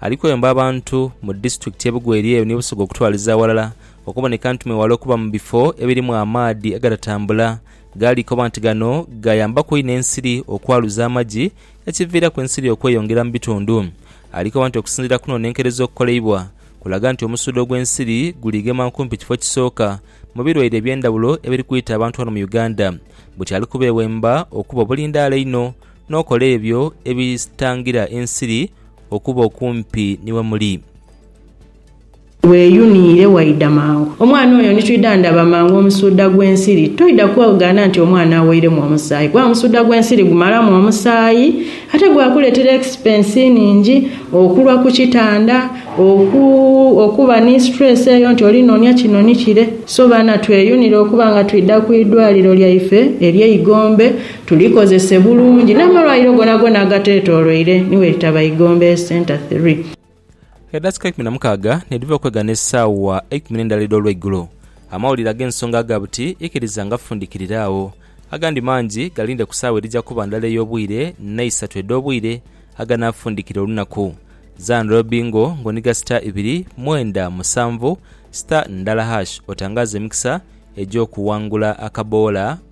Ali kwemba abantu mu disiturikiti y'e Bugweri eyo ni Busoga okutwaliza aghalala okuboneka nti mwewale okuba mu bifo ebirimu amaadhi agatatambula gali koba nti gano gayambaku inho ensiri okwaluza amagi ekiviiraku ensiri okweyongera mu bitundu. Ali koba nti okusinziira kunonenkereza okukoleibwa kulaga nti omusuudho gw'ensiri guli gema nkumpi kifo kisooka mu birwaire ebyendhawulo ebiri kwita abantu ghano mu Uganda buti ali kubeewemba okuba obulindaala einho n'okola ebyo ebitangira ensiri okuba okumpi ni we muli. Weeyuniire waidha mangu omwana oyo ni twidha ndaba mangu omusuuda gw'ensiri. Toidha kwegaana nti omwana aweiremu omusaayi kuba omusuuda gw'ensiri gumalamu omusaayi ate gwakuleetera ekisipensi nhingi, okulwa ku kitanda, oku, okuba ni situreesi eyo nti oli noonia kino ni kire. So baana tweyunire okuba nga twidha ku idwaliro lyaife ery'e Igombe. Tulikozese bulungi n'amalwaire gonagona agateetooloire ni bwe litaba Igombe Centre Three. Edakika eikumi na mukaaga nidhiva okwegana esaawa eikumi n'endala edh'olweigulo, amawulire ag'ensonga aga buti ikiriza ngafundikirira agho. Agandi mangi galinde ku saawa edhija kuba ndala ey'obwire n'eisatu edh'obwire aganaafundikira olunaku. Zana lwa Bingo ng'oniga star ibiri, mwenda, musanvu, star, ndala hash otangaaze emikisa egy'okuwangula akaboola.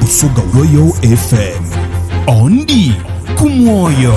Busoga Royal FM. Ondi ku mwoyo.